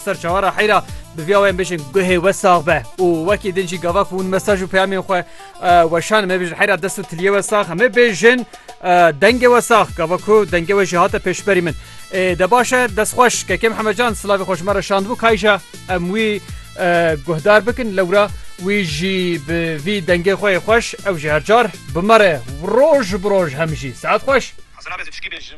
Ser çawara heyra bi vîya wê bêjin guhê we sax be û wekî din jî gava ku hûn mesaj û peyamên xwe weşan me bêjin heyra dest û tiliyê we sax me bêjin dengê we sax gava ku dengê we jî hate pêşberî min de baş e dest xweş kekê Mihemecan silavê xweş me re şandbû kayja em wî guhdar bikin lewra wî jî bi vî dengê xwe xweş ew ji hercar bimere roj bi roj hem jî saet xweş.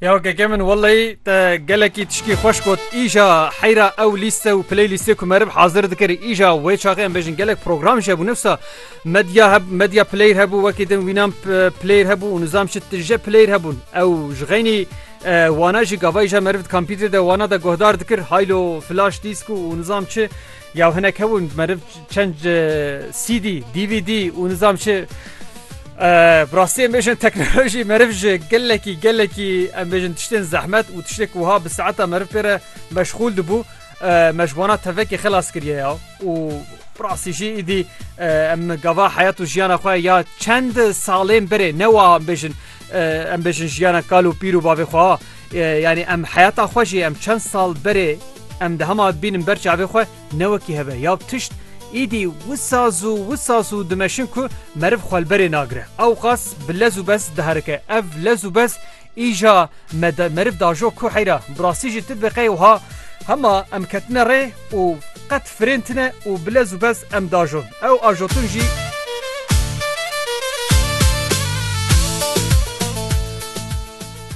Ya keke min welleyî te gelekî tişkî xweş got îja heyra ew lîste û piley lîste ku merib hazir dikirî îja wê çaxê em bêjin gelek program ji hebû nefsa medya heb medya pileyr hebû wekî din wînan pileyr hebû û nizam şi tije pileyr hebûn ew ji xeynî wana jî gavayîja merib kampîtê de wana de guhdar dikir haylo flaş dîsk û nizam çi Ya hinek hebûn meriv çend CD, DVD û nizam çi bi rastî em bêjin teknolojî meriv ji gelekî gelekî em bêjin tiştên zehmet û tiştêk wiha bi saeta meriv pê re meşxûl dibû me ji wana tevekê xilas kiriye ya û bi rastî jî îdî em gava heyat û jiyana xwe ya çend salên berê ne wiha bêjin Em bêjin jiyana kal û pîr û bavê xwe yanî em heyata xwe jî em çend sal berê em di hema bînin ber çavê xwe ne wekî heve ya tişt îdî wisa zû wisa zû dimeşin ku meriv xwelberê nagire ew qas bi lez û bes diherike ev lez û bes îja me meriv dajo ku heyra birasî jî tu biqey wiha hema em ketine rê û qet Firên tune û bi lez û bez em diajon. Ew ajotin jî.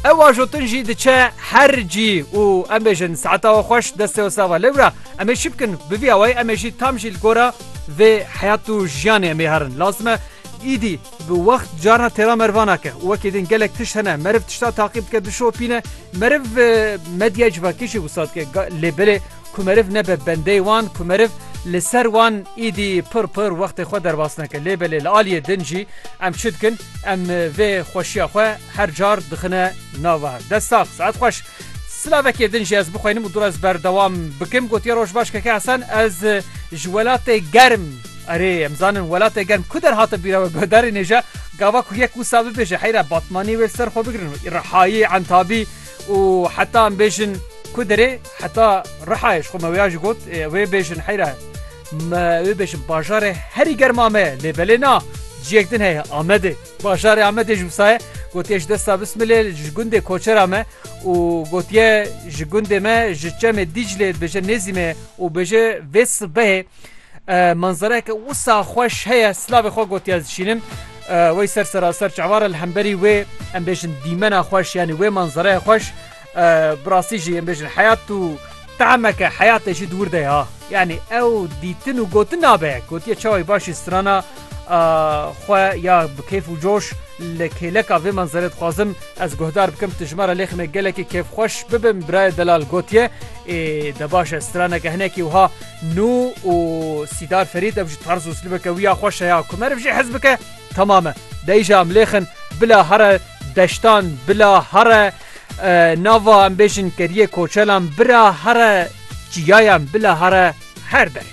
Ew ajotin jî diçe her cî û em bêjin saeta we xweş destê we sava. Lewra em ê çi bikin? Bi vî awayî em ê jî tam jî li gora vê heyat û jiyanê em ê herin. Lazim e îdî bi wext carna têra merivan nake û wekî din gelek tişt hene meriv tişta taqîb dike, dişopîne. Meriv medyaya civakî jî wisa dike lê belê. Ku meriv nebe bendey wan, ku meriv li ser wan îdî pir pir wextê xwe derbas neke. Lê belê li aliyê din jî em çi dikin? Em vê xweşiya xwe her car dixine nava. Dest sax, saet xweş. Silavekê din jî ez bixwînim û dûr ez berdewam bikim. Gotiye roj baş Keke Hesen ez ji welatê germ Erê em zanin welatê germ ku der hate bîra we guhdarî nêja gava ku yek wisa bibêje heyra batmanî wê li ser xwe bigrin û îrihayî entabî Û heta em bêjin ku derê heta Rihayê ji xwe me wêya jî got ê wê bêjin heyra me wê bêjin bajarê herî germa me ye lê belê na ciyek din heye Amedê bajarê Amedê ji wisa ye gotiye ji desta bismilê ji gundê koçera me û gotiye ji gundê me ji çemê Dîclê dibêje nêzî me ye û bêje vê sibehê manzareyeke wisa xweş heye silavê xwe gotiye ez dişînim. Wey ser seraser çavare li hemberî wê em bêjin dîmena xweş yanî wê manzereya xweş bi rastî jî em bêjin heyat û temeke heyatê jî di wir de ya yanî ew dîtin û gotin nabe gotiye çawa baş jî strana xwe ya bi kêf û coş li kêleka vê manzerê dixwazim ez guhdar bikim tu ji me re lêxime gelekî kêfxweş bibim birayê delal gotiye ê de baş e straneke hinekî wiha Nû û Sîdar Ferîd ev ji tarz û slibeke wî ya xweş e ya ku meriv jî hez bike temam e. Dey jî em lêxin bila here deştan, bila here nava em bêjin keriyê koçelan, bira here çiyayan, bila here her derê.